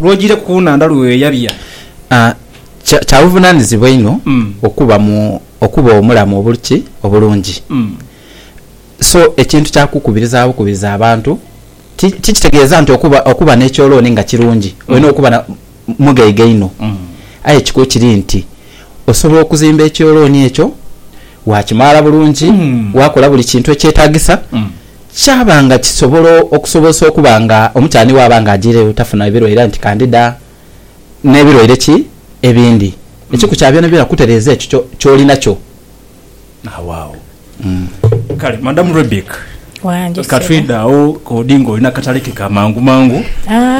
lw'ojiireku ku nhandha lwe weeyabya. A Kya kya buvunaanizibwa inho okuba mu okuba omulamu obuli ki obulungi. So ekintu kya kukubiriza bukubiriza abantu ti tikitegeeza nti okuba okuba n'ekyolooni nga kirungi, olina okuba na mughaiga inho. Aye ekikulu kiri nti osobola okuzimba ekyolooni ekyo, waakimaala bulungi, waakola buli kintu ekyetaagisa. Kyaba nga kisobola okusobozesa okuba nga omukyani bw'aba nga ajiireyo tafuna birwaire aye nti kandida n'ebirwaire ki ebindi. Ekiku kya byonabyona kutereeza ekyo ky'oli nakyo. Agho agho. Kale Madamu Rebeck, Wange ka ssebo. twidhe agho k'odi ng'oli n'akatale ke ka mangumangu,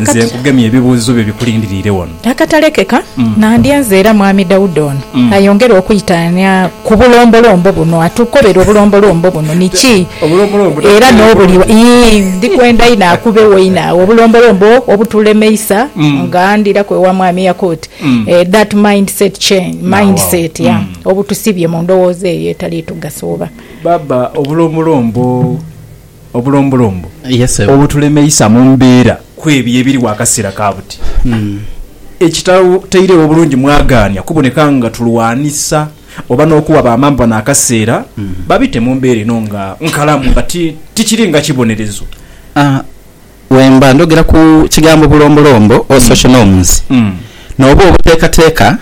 nze nkugemye ebibuuzo byo bikulindiriire wano. Akatalekeka nandyenze era Mwami Daudi ono ayongere okwitaania ku bulombolombo buno, atukobere obulombolombo buno ni ki Obulombolombo era takubeere n'obuli bulungi. wa. Ii, Ndi kwenda inho akubewo inho agho obulombolombo obutulemeisa nga ndiraku ewa Mwami Yakut, eh, that mind set change, Now, mind awo. set, yeah, Mm. obutusibye mu ndowooza eyo etali tugasa oba. Baaba, obulombolombo. obulombolombo obutulemeisa mu mbeera kw'ebyo ebiriwo akaseera ka buti, ekitatairegho bulungi mwagaania kuboneka nga tulwanisa oba n'okuwa bamaama bano akaseera babite mu mbeera eno nga nkalamu nga tikiri nga kibonerezo. Wemba ndhogera ku kigambo bulombolombo or social norms, n'oba obuteekateeka.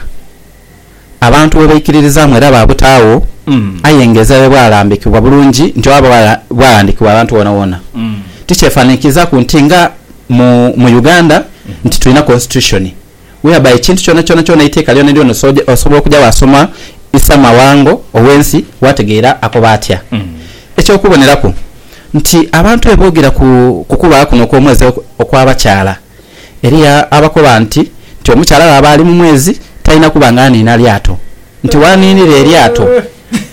abantu bwe baikiririzaamu era baabutaagho, aye nga ezira bwe bwalambikibwa bulungi nti oba bwalandikibwa abantu boonaboona, tikyefanhanhikirizaku nti nga mu mu Uganda nti tulina constitution whereby ekintu kyonakyona kyona eiteeka lyonalyona osobola okuja waasoma isamawango ow'ensi waategeera akoba atya. Eky'okuboneraku nti abantu bwe boogera ku kubaawo kuno okw'omwezi okw'abakyala, Eriya abakoba nti, Nti omukyala bw'aba ali mu mwezi, talina kuba nga aniina lyato. Nti bw'aniinira eryato,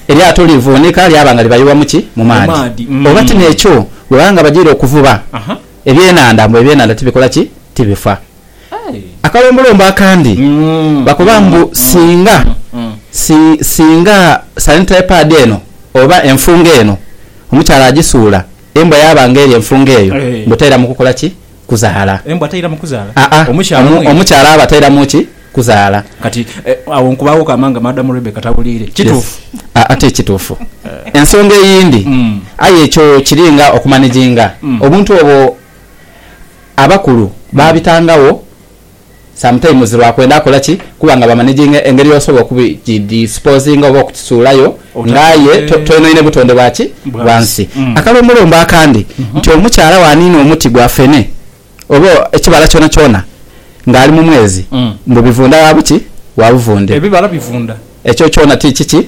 eryato livuunika lyaba nga libayibwa mu ki? Mu maadhi. Oba ti n'ekyo, bwe baba nga bajaire okuvuba ebyenhandha, mbu ebyenhandha tibikola ki? Tibifa. Akalombolombo akandi, bakoba mbu singa, si, singa sanitary pad eno oba enfungo eno omukyala agisuula, embwa yaaba nga erya enfungo eyo, mbu taira mu kukola ki? kuzaala. Embwa tairamu kuzaala? Aa, Omukyala omu, mwene. omukyala aba tairamu ki? Kuzaala. Kati, e, agho nkubaaghoku amaanga Madamu Rebecca tawuliire. Yes. Kituufu? Aa, ti kituufu. Ensonga eyindi, Mm. aye ekyo kiri nga okumaniginga. Mm. Obuntu obwo abakulu baabitangagho. sometimes lwa kwenda kola ki kuba nga ba managinga engeri yosobola okubi ki disposinga oba okukisuulayo nga aye toyonoine butonde bwa ki bwa nsi. Akalombolombo akandi nti omukyala bwaniina omuti gwa fene oba ekibala kyona kyona nga ali mu mwezi mbu bivunda wa buki wa buvunde. Ebibala bivunda. Ekyo kyona ti kiki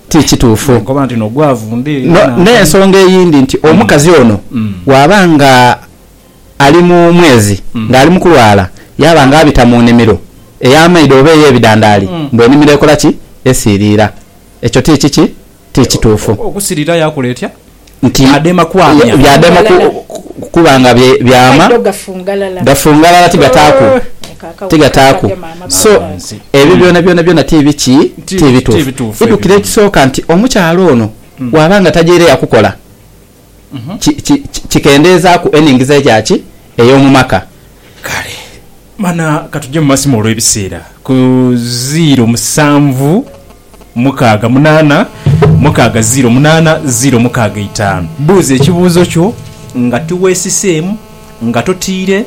ti kituufu. Nkoba nti no gwavunda era. N'ensonga eyindi nti omukazi ono bwaba nga. ali mu mwezi ng'ali mu kulwala, yaaba ng'abita mu nimiro ey'amaidho oba ey'ebidandaali, mbu enimiro ekola ki? Esiiriira. Ekyo ti kiki? Ti kituufu. Okusiriira yakola etya? Nti Byadema kwamya. byadema ku, Fungalala. kuba nga bye, byama, Amaidho gafungalala. gafungalala, tigataaku, Eeh. Eka akawuka tigataaku. kagema maama So, Baba. Nsi. ebyo Mm. byona byona byona ti biki? Ti Ti bituufu. bituufu ebyo Idhukire byona. ekisooka nti, omukyala ono bw'aba nga tajaire yakukola, ki, ki, ki, kikendeezaaku enhingiza eya ki? Ey'omu maka. Kale, mana ka tuje mu masimu olw'ebiseera. Ku ziiro musanvu mukaaga munaana, mukaaga ziiro munaana, ziiro mukaaga itaanu. Buuza ekibuuzo kyo nga tiweesiseemu, nga totiire,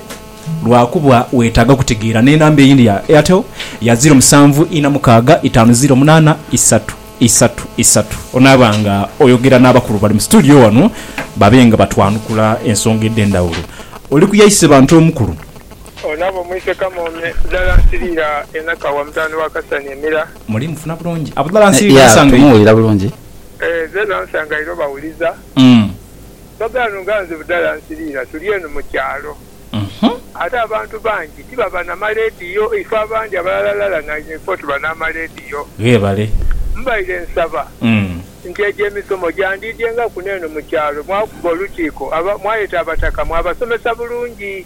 lwa kuba weetaaga kutegeera n'enamba eyindi ya Airtel ya ziiro musanvu ina mukaaga itaanu ziiro munaana isatu. isatu isatu, onaaba nga oyogera n'abakulu bali mu situdiyo wano babe nga batwanukula ensonga edh'endhawulo. Oli ku yaise bantu omukulu. Onaaba omwise Kamoome. Budhala nsiriira e Nakawa mutabani wa Kasani Emira. Muli mufuna bulungi? Abudhala nsiriira nsanga ira. Tumuwulira bulungi. Nze era nsanga ira obawuliza. Bagano nga nze Budhala nsiriira tuli eno mu kyalo. Ate abantu bangi tibaba na maleediyo. Ife abandi abalalalala na ife tuba n'amaleediyo. Ghebale. Mbaire nsaba nti egyo emisomo gyandiidyengaku n'eno mu kyalo mwakuba olukiiko aba, mwayeta abataka mwabasomesa bulungi.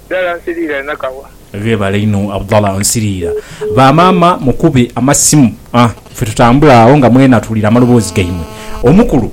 Abdallah Nsiriira e Nakawa. Ghebale inho Abdallah Nsiriira. Ba maama mukube amasimu a, ffe tutambule agho nga mwena tuwulira amaloboozi gaimwe. Omukulu.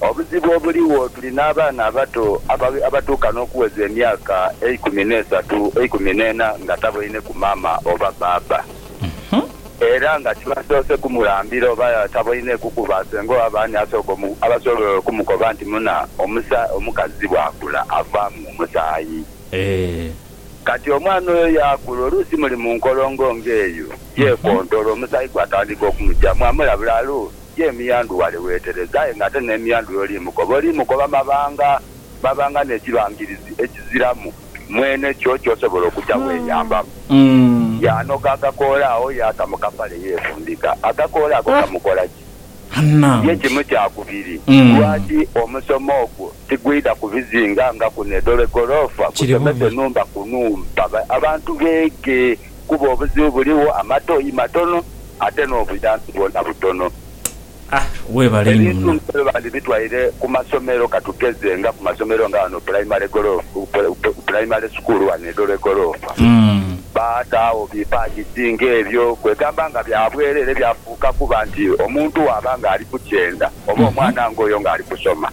Obuzibu obuligho tuli n'abaana abato abatuuka n'okuweza emyaka eikumi n'esatu, eikumi n'ena nga taboineku maama oba bbaabba. Era nga tibasoose kumulambira oba taboineku ku baasenga oba baani asooka abasobola okumukoba nti muna omukazi bw'akula avaamu omusaayi. Kati omwana oyo yaakula oluusi muli mu nkolongo ng'eyo, yeekontola omusaayi gwatandika okumugyamu amulabula alo Ye emiyandhu wale weetereza aye ng'ate n'emiyandhu y'oli mukoba, oli mukoba mabanga mabanga n'ekibangirizi ekiziramu mwene kyo ky'osobola okuja weeyambamu. Yaanoga akakoola agho yaata mu kapale yeefundika. Akakoola ako kamukola ki? Ye kimu kya kubiri. Lwaki omusomo ogwo tigwidha ku bizinga nga kuno e Dole Goloofa, gusomese nhumba ku nhumba abantu beege. kuba obuzibu buligho, amatoyi matono ate n'obuyambi bwona butono. Ah, weebale inho Ebintu muno. bino bandibitwaire ku masomero katugeze nga ku masomero nga ghano pulayimale golofu, pulayimale sukuulu ghano e Dholwe Goloofa. Baataagho bi paadisi ng'ebyo, kwegamba nga bya bwerere byafuuka kuba nti omuntu bw'aba ng'ali ku kyenda oba omwana ng'oyo ng'ali kusoma.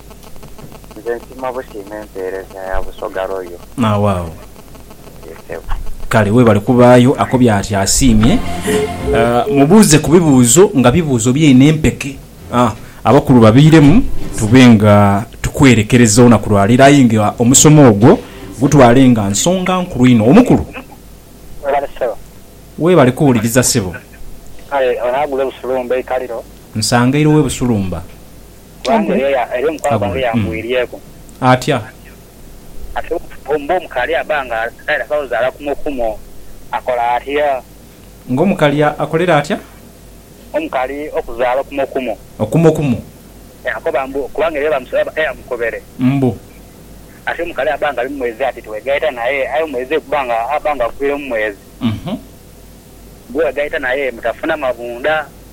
Nze nsiima busiima empeereza ya Busoga Royal. Agho agho. Yee ssebo. Kale webale kubaayo. Akobye ati asiimye. Mubuuze ku bibuuzo nga bibuuzo byaine empeke. Abakulu babiiremu tube nga tukwerekereza olunaku lwa leero aye nga omusomo ogwo gutwale nga nsonga nkulu inho. Omukulu. Webale ssebo. Webale kuwuliriza ssebo. Kale onagula e Busulumba eikaliro. Nsangaire owe Busulumba. kubanga era omukwala gwange yangwirieku. Atya? Ate mbu omukali aba nga taidha kuzaala kumu kumu akola atya? Nga omukali akolera atya? Omukali okuzaala okumu kumu. Okumu kumu. Yakoba mbu kubanga era eyamukobere. Mbu. Ate omukali aba nga ali mu mwezi ati tiwegaita naye aye omwezi guba nga aba nga agwire mu mwezi. Mbu wegaita naye mutafuna mabunda.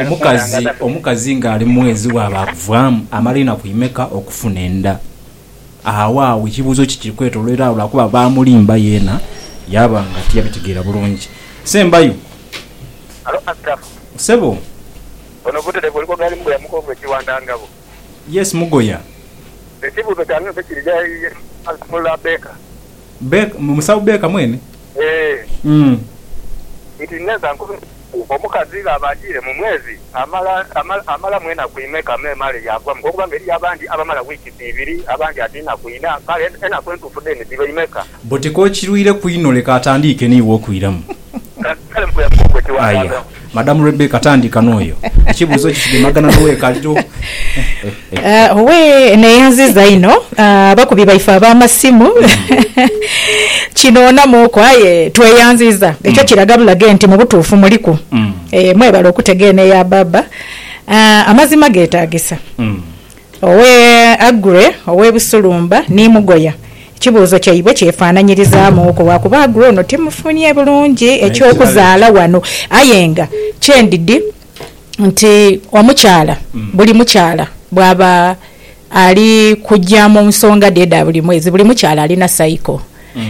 Omukazi omukazi ng'ali mu mwezi bw'abaakuvaamu, amala enaku imeka okufuna enda? Agho agho ekibuuzo ki kiri kwetoloera agho lwa kuba baamulimba yeena yaaba nga tiyabitegeera bulungi. Sembayo. Halo Asirafu. Ssebo. Ono Buterevu oli ku gaali mugooya mukovu e Kiwanda Ngabo. Yes mugoya. Ekibuzo kyange nze kiri gha ye musawo Baker? Baker musawo Baker mwene? Eeh. Nti neza nkubireku omukazi ghaba ajiire mu mwezi amala amalamu enaku imeka me male yagwa muko kuba nga eriyo abandi abamala weeks ibiri abandi ati naku ina kale enaku entufu then dhiba imeka? But k'okirwireku inho leka atandiike n'iwe okwiramu. Aya, Madam Rebecca tandika n'oyo. Ekibuuzo kikigemagana n'ow'ekaliro. Owee, eno eyanziza inho. Abakubi baife ab'amasimu kinoonamuuku aye tweyanziza. Ekyo kiraga bulaga nti mu butuufu muliku. Mwebale okutega eno eya Baaba. Amazima geetaagisa. Owe Aggrey ow'e Busulumba ni Mugoya, ekibuuzo kyaibwe kyefaananyirizaamuuku lwakuba Aggrey ono timufunye bulungi eky'okuzaala wano aye nga kyendidhi nti omukyala buli mukyala bwaba ali kuja mu nsonga dhe edha buli mwezi buli mukyala alina cycle.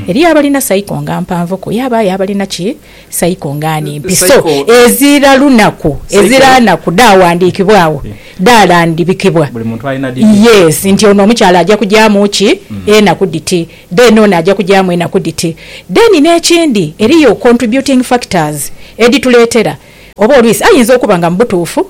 Eriyo abalina cycle nga mpanvuku yabaayo abalina ki? Saiko ng'ani? Mpiso ezira lunaku, ezira naku, dhaawandikibwa agho, dhaalandhibikibwa. Buli muntu alina dhiti. Yes, nti ono omukyala aja kujaamu ki? Enaku dhiti. Then ono aja kujaamu enaku dhiti. Then n'ekindi, eriyo contributing factors edhituleetera oba olwisi ayinza okuba nga mu butuufu,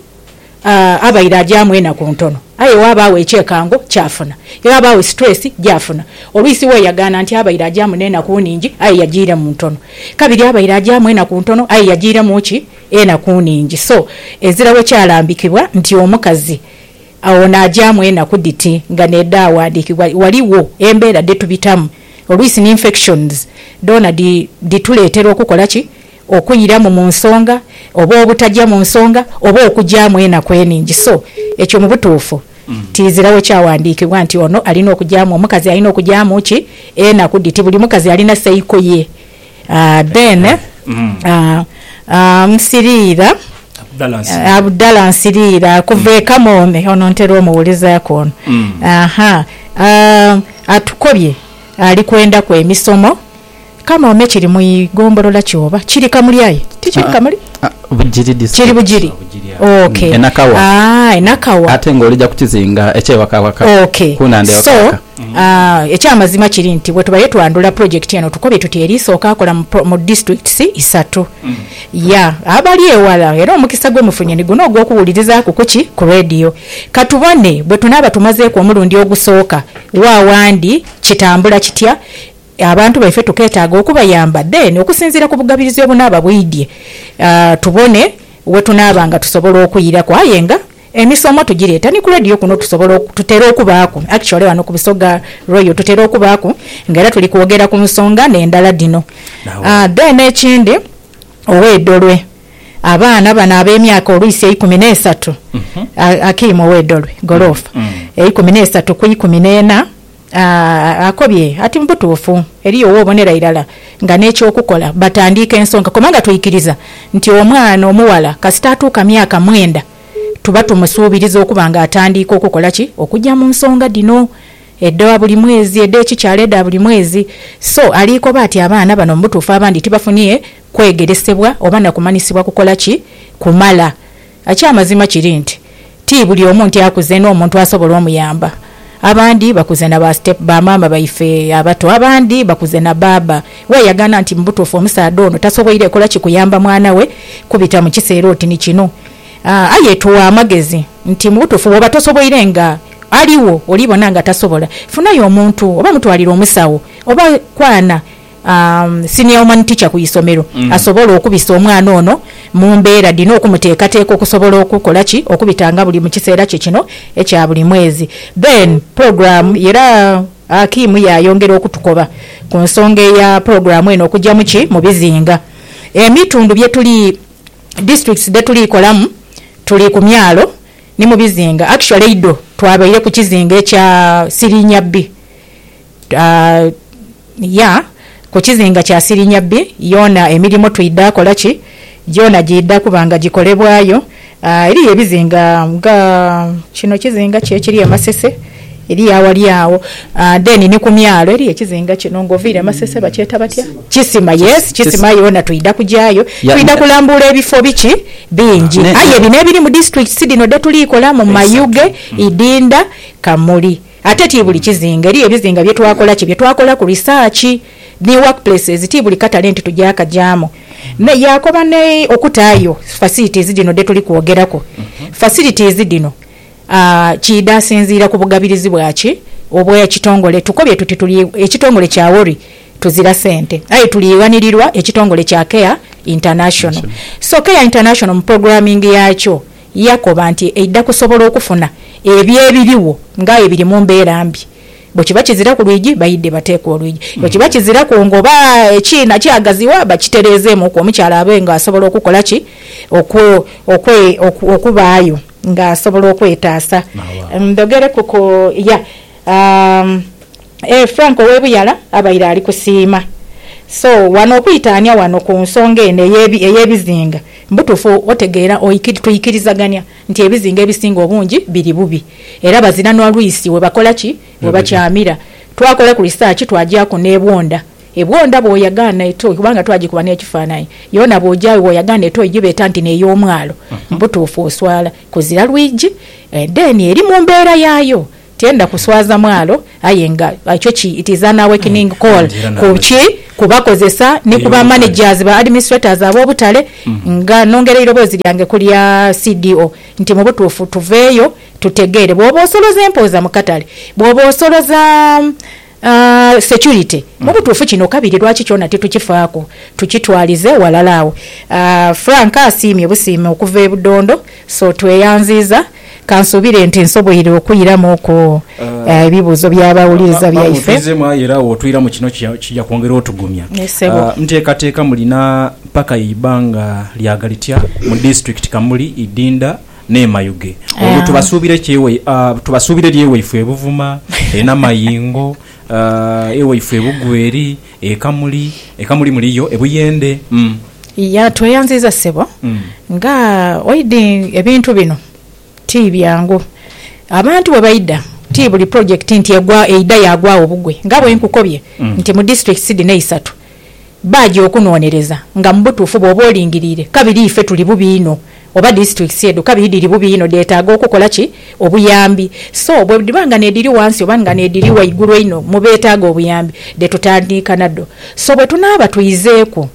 abaire agyamu enaku ntono aye ghabaagho ekyekango ky'afuna. Ghabaagho stress gy'afuna. Olwisi weeyagaana nti abaire agyamu n'enaku nhingi aye yagiiremu ntono. Kabiri abaire agyamu enaku ntono aye yagiiremu ki? Enaku nhingi. So, ezira bwe kyalambikibwa nti omukazi ono agyamu enaku dhiti nga n'edhaawandiikibwa, ghaligho embeera dhe tubitamu. Olwisi ni infections dhoona dhi, dhituleetera okukola ki? okwiramu mu nsonga oba obutagya mu nsonga oba okugyamu enaku eningi so ekyo mu butuufu tiziragho kyawandiikibwa nti ono alina okugyamu omukazi alina okugyamu ki enaku dhiti buli mukazi alina seiko ye aah then aah nsiriira Abdallah Nsiriira kuva e Kamoome ono ntera omuwulizaaku ono ahaa aah atukobye ali kwendaku emisomo. Kanoome kiri mu igombolola ki oba? Kiri kamuli aye tikiri kamuli? Bugiri district. Kiri Bugiri. Ok. E Nakawa. Aah e Nakawa. Ate nga olija ku kizinga ekye Wakawaka Ok. ku nhandha e So, Wakawaka. aah, ekyamazima kiri nti bwetubaire twandhula project eno tukobye tuti eri sooka kola mu pro, mu districts isatu. Yeah. Abali ewala era omukisa gwe mufunye ni guno ogw'okuwulirizaaku ku ki? Ku radio. Ka tubone bwe tunaaba tumazeeku omulundi ogusooka wa wandi kitambula kitya? Abantu baife tukeetaaga okubayamba then okusinziira ku bugabirizi obunaaba bwidhie tubone we tunaaba nga tusobola okwiraku aye nga emisomo tugireeta ni ku Radio kuno tusobola tutera okubaaku actually ghano ku Busoga Royal tutera okubaaku nga era tuli kwogera ku nsonga n'endala dhino then ekindi ow'e Dolwe abaana bano ab'emyaka olwisi eikumi n'esatu Akim ow'e Dolwe Goloofa eikumi n'esatu ku ikumi n'ena. Akobye ati mu butuufu eriyo w'obonera irala nga n'eky'okukola batandiike ensonga kubanga twikiriza nti omwana omughala kasita atuuka myaka mwenda tuba tumusuubiriza okuba nga atandiika okukola ki? Okuja mu nsonga dhino edha buli mwezi, edh'ekikyala, edha buli mwezi so aliikoba ati abaana bano mu butuufu abandi tibafunye kwegeresebwa oba na kumanyisibwa kukola ki? Kumala. Eky'amazima kiri nti ti buli omu nti akuze n'omuntu asobola omuyamba. Abandi bakuze na ba step ba maama baife abato, abandi bakuze na baaba. Weeyagana nti mu butuufu omusaadha ono tasoboire kola ki kuyamba mwana we kubita mu kiseera oti ni kino. Aye tugha amagezi nti mu butuufu bw'oba tosoboire nga aligho oli bona nga tasobola, funayo omuntu oba mutwalire omusawo oba kwana Senior Woman Teacher ku isomero asobole okubisa omwana ono mu mbeera dhino okumuteekateeka okusobola okukola ki? Okubita nga buli mu kiseera kye kino ekya buli mwezi. Then program era Hakim yaayongera okutukoba ku nsonga eya program eno okugyamu ki? Mu bizinga. Emitundu bye tuli, districts dhe tuli kolamu tuli ku myalo ni mu bizinga. Actually eidho twabaire ku kizinga ekya Sirinyabbi. Ya ku kizinga kya Sirinyabbi yoona emirimo twidha kola ki? Gyona gyidha kuba nga gikolebwayo. Eriyo ebizinga nga kino kizinga ki ekiri e Masese, eriyo awali agho. Then ni ku myalo eriyo ekizinga kino ng'oviire e Masese bakyeta batya? Kisima, yes, Kisima yoona twidha kugyayo. Twidha kulambuula ebifo biki? Bingi. Aye bino ebiri mu disiturikitisi dhino dhe tuli kolamu, Mayuge, Idinda, Kamuli. Ate ti buli kizinga, eriyo ebizinga bye twakola ki? Bye twakolaku research ni workplaces, ti buli katale nti tuja kagyamu. Me yaakoba ni okutaayo facilities dhino dhe tuli kwogeraku. Facilities dhino kiidha asinziira ku bugabirizi bwa ki? Obw'ekitongole. Tukobye tuti tuli ekitongole kya WORI tuzira sente, aye tuliighanirirwa ekitongole kya Care International. So Care International mu programming yaakyo, Yakoba nti eidha kusobola okufuna ebyo ebirigho nga aye biri mu mbeera mbi. Bwe kiba kiziraku lwigi, baidhe bateekwe olwigi. Bwe kiba kiziraku ngoba, ekiina kyagaziwa, bakitereezeemuku omukyala abe nga asobola okukola ki? Okwe, okwe, oku, okubaayo nga asobola okwetaasa. Ndhogereku ku, yeah, aa. Eeh Frank owe Buyala abaire ali kusiima. So wano okwitaania wano ku nsonga eno ey'ebizinga mbutuufu otegeera tuikirizagania nti ebizinga ebisinga obungi biri bubi era bazira n'olwisi webakola ki? Webakyamira. Twakolaku research twagyaku n'ebwonda. Ebwonda bwoyagaana etoyi kubanga twagikuba n'ekifaananyi yoona bwogyayo bwoyagaana etoyi gyibeeta nti n'eyomwalo mbutuufu oswala kuzira lwigi then eri mu mbeera yaayo. Tiyenda kuswaza mwalo aye nga ekyo ki it is an awakening call ku ki ku bakozesa ni ku ba managers ba administrators ab'obutale nga nongera eirobozi lyange ku lya CDO nti mu butuufu tuveeyo tutegeere bwoba osoloza empooza mu katale, bwoba osoloza. Security. Mu butuufu kino kabiri lwaki kyona titukifaaku, tukitwalize ghalala agho. Frank asiimye busiimi okuva e Budondo, So tweyanziiza. Kansuubire nti nsoboire okwiramu ku ebibuuzo by'abawuliriza baife. Bamuviizeemu aye era w'otwiramu kino kija kwongera otugumya. Nteekateeka mulina mpaka y'eibbanga lyaga litya mu disitulikiti Kamuli, Idinda, N'emayughe. Olwo tubasuubira ekyewa, tubasuubira eri ewaifwe e Buvuma, e Namayingo, e waifwe e Bugweri, e Kamuli, e Kamuli muli yo, e Buyende, umm. Iya, tweyanziiza ssebo. Nga oidhi ebintu bino ti byangu. Abantu bwe baidha, ti buli pulojekiti nti egwa, eidha yaagwagho bugwe. Nga bwe nkukobye nti mu disiturikiti dhino eisatu, Baaja okunoonereza nga mu butuufu bw'oba olingiriire kabiri ife tuli bubi inho oba disitulikiti edho kabiri dhiri bubi inho dheetaaga okukola ki? Obuyambi. So bwe dhiba nga n'edhiri wansi oba nga n'edhiri waigulu einho mu beetaaga obuyambi dhe tutandika nadho. So bwe tunaaba twizeeku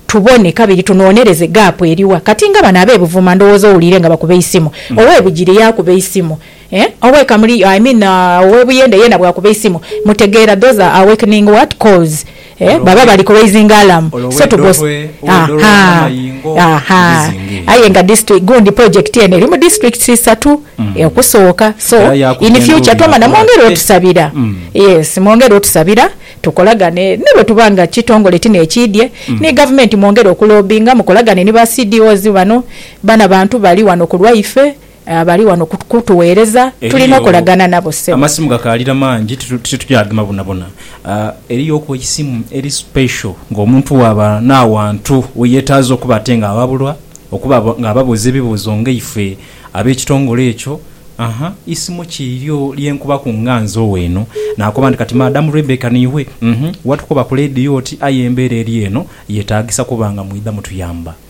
tubone kabiri tunoonereze gaapu eri wa. Kati nga bano ab'e Buvuma ndowooza owuliire nga bakuba eisimu. Ow'e Bugiri yaakuba eisimu. Eeh owe kamuli I mean owe buyende yena bwakuba eisimu mutegeera those are awakening what calls eeh baba bali ku raising alarm so to go ahaa ahaa aye nga district gundi project eno eri mu districts isatu okusooka so in future twamala mwongere otusabira yes mwongere otusabira tukolagane ni bwetuba nga kitongole ti nekiidye ni gavumenti mwongere oku lobinga mukolagane ni ba CDOs bano bano abantu bali wano ku lwaife. Bali wano kutuweereza. Tulina okolagana nabo, ssebo. Amasimu gakaalira mangi, titugya gema bwonabwona. Eriyoku eisimu eri special ng'omuntu bw'aba n'awantu we yeetaaza okuba ate ng'awabulwa, okuba ng'ababuuza ebibuuzo nga ife ab'ekitongole ekyo. Aha, isimu ki lyo lye nkubaku nga nzoowa eno? Naakoba nti, Kati Madam Rebecca niiwe? Uhhm, watukoba ku leediyo oti, Aye embeera eri eno yeetaagisa kuba nga mwidha mutuyamba.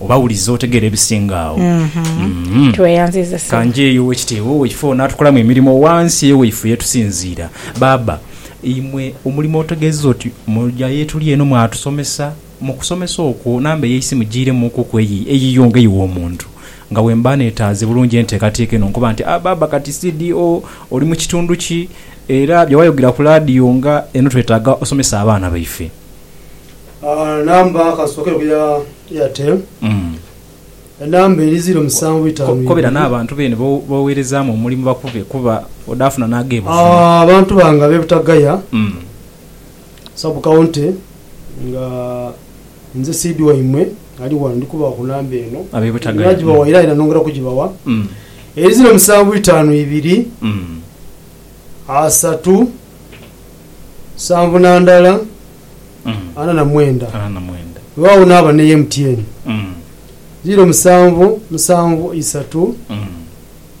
Oba wuliza otegeere ebisinga agho. Uhmm. Tweyanziiza Ssebo. Ka njeeyo ow'ekitiibwa owaife ono atukolamu emirimo ghansi eyo waife ye tusinziira. Baaba, imwe omulimo otegeeza oti muja ye tuli eno mwatusomesa, mu kusomesa okwo namba ey'eisi mujiiremuukuku eyi eyiyo nga ey'omuntu. Nga bwe mba neetaaze bulungi enteekateeka eno nkoba nti, Ah, Baaba kati CDO oli mu kitundu ki? Era bye wayogera ku laadiyo nga eno twetaaga osomese abaana baife. Namba kasookera ku ya Airtel. Enamba eri ziro musanvu itaanu ibiri. Kobera n'abantu beene b'oweerezaamu omulimu bakube kuba odaafuna n'ag'ebuziba. Abantu bange ab'e Butagaya Sub County nga nze Sid waimwe ali ghano ndi kubawa ku namba eno. Ab'e Butagaya. Nagibawa ira era nongera kugibawa. Eri ziro musanvu itaanu ibiri, asatu, nsanvu na ndala. ana na mwenda. Weewaawo naaba ni MTN ziiro musanvu musanvu isatu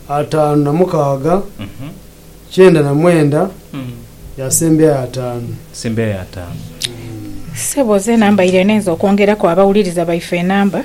ataanu na mukaaga kyenda na mwenda ya Sembeya y'ataanu. Ssebo zeena mbaire ninze okwongeraku abawuliriza baife enamba.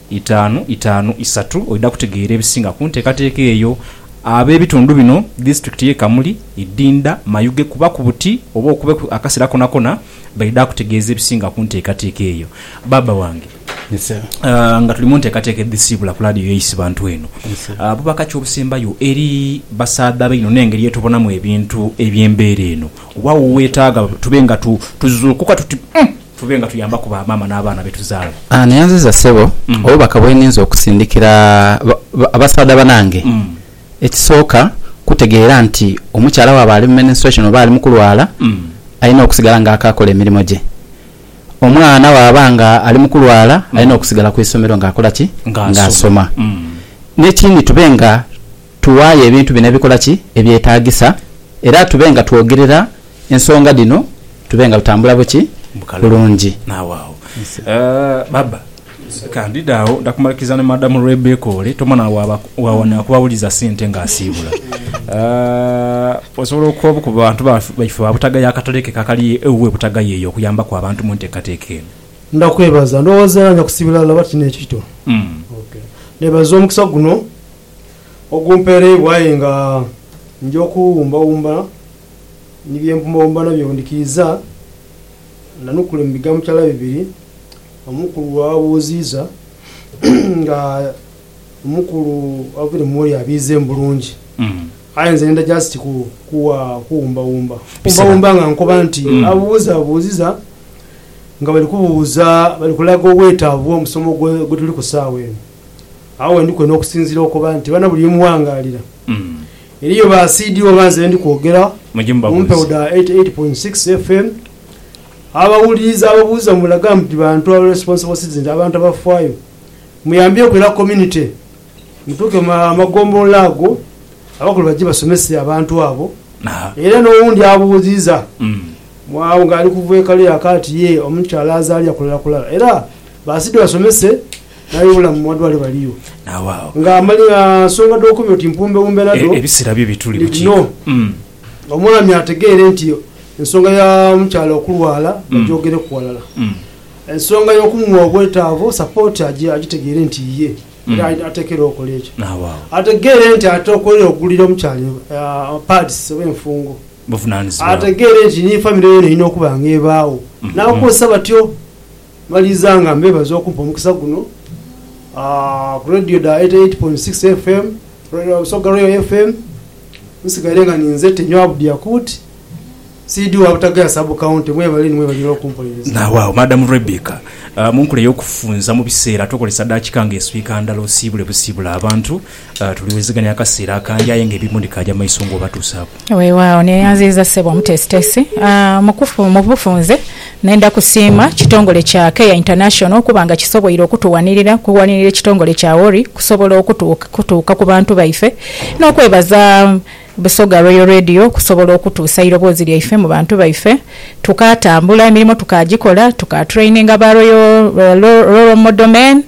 Itaanu itaanu isatu oidha kutegeera ebisinga ku nteekateeka eyo. Ab'ebitundu bino, Disitulikiti y'e Kamuli, Idinda, Mayuge kuba ku buti oba okubeku akaseera konakona baidha kutegeeza ebisinga ku nteekateeka eyo. Baaba wange, nga tuli mu nteekateeka edhisiibula ku laadiyo ya Isibantu eno, buba kaki obusembayo eri basaadha baino n'engeri ye tubonamu ebintu eby'embeera eno? Oba wo weetaaga tube nga tuzuukuka tuti, Umm! Tube nga tuyambaku ba maama n'abaana be tuzaala. Neyanziza ssebo obubaka bweninze okusindikira abasaadha banange. Ekisooka kutegeera nti omukyala bwaba ali mu menstruation oba ali mukulwala alina okusigala nga akaakola emirimo gye. Omwana bwaba nga ali mukulwala alina okusigala ku isomero nga akola ki? Nga asoma. Nekindi tube nga. Tuwayo ebintu bino ebikola ki? Ebyetaagisa, era tube nga twogerera ensonga dhino tube nga tutambula buki? Bulungi. Nawe agho baba, ka ndidhe agho. Nda kumaliriza ni Madamu Rebecca ole, toma na wawa na kubawuliza sente ng'asiibula. Osobola okukoba ku bantu baife ba Butagaya akatale ke akali ewuwe Butagaya eyo okuyambaku abantu mu nteekateeka eno? Nda kwebaza. Ndowooza era nja kusiibula laba kino ekito. Neebaza omukisa guno. Ogumpeereibwa aye nga nja okuwumbawumba ni bye mpumbawumba nabyo bwe ndhikiiza. Nanukule mu bigambo kyala bibiri omukulu bw'ababuuziiza nga omukulu avaire mu woli abiize mu bulungi. Aye nze ndidha just kuwa kuwumbawumba. Kuwumbawumba nga nkoba nti ababuuzabuuziza nga bali kubuuza bali kulaga obwetaavu bw'omusomo gwe tuli ku saagha eno. Agho we ndi kwena okusinziira okoba nti bana buli ye muwangaalira. Eriyo ba CD oba nze be ndi kwogera mu mpewo dha 88.6 FM. Abawuliriza ababuuza mulaga muti bantu abo responsible citizens, abantu abafaayo. Muyambyeku era community. Mutuuke mu magombolola ago abakulu baje basomese abantu abo. Era n'owundi abuuziza agho ng'ali kuva e Kaleeraka ati, Yee, omukyala azaalira kulala kulala? Era ba CD basomese Aye bulamu mu madwaliro baliyo. Nawaagho. Nga amali a nsonga dhokumira oti mpumbewumbe nadho. E, ebisera byo bituli bukiika. Umm. Omwami ategeere nti ensonga ya mukyala okulwala bagyogereku ghalala. Umm. Ensonga y'okumuwa obwetaavu, support, agye agitegeere nti yiye era ateekerewo okola ekyo. Nawaagho. Ategeere nti ate okwere okugulira omukyala a pads oba enfungo. Buvunanizibwa bwe. Ategeere nti ni famire yoona erina okuba nga ebaagho. N'abakozesa batyo. Maliza nga mbebaza okumpa omukisa guno ku Radio dha 88.6 FM, Busoga Royal FM. Nsigaire nga ninze Tenywa Abdi Yakut, CD wa Butagaya Sub County. Mwebale inho mwebale inho okumpuliriza. Nawaagho Madam Rebecca, munkula eyokufunza mubiseera tokozesa daakika nga eswika ndala osiibule busiibule abantu. Tuliwuliziganya akaseera akangi aye nga ebimu ndikaaja maiso ng'obatuusaaku. Weewaawo. Neeyanziiza Ssebo Omuteesiteesi. Mu bufunze, nenda kusiima kitongole kya Care International okuba nga kisoboire okutuwanirira okuwanirira ekitongole kya Worry okusobola okutuuka ku bantu baife n'okwebaza Busoga Royal Radio okusobola okutuusa eiroboozi lyaife mu bantu baife. Tukaatambula, emirimo tukaagikola, tukatraininga ba Royal Role Model Men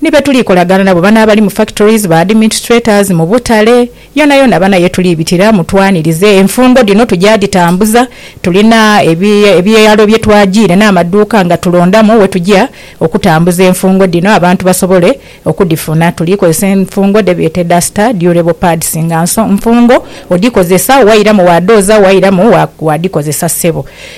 Ni be tuli kolagana nabo, bano abali mu factories, ba adminstrators, mu butale, yonayona bano ye tuli bitira, mutwanirize. Enfungo dhino tuja dhitambuza, tulina ebyalo bye twajiire n'amaduuka nga tulondamu we tuja okutambuza enfungo dhino abantu basobole okudhifuna. Tuli kozesa enfungo dhe beeta duster, durable pads nga nso nfungo, odhikozesa wairamu waadhooza, wairamu waadhikozesa ssebo.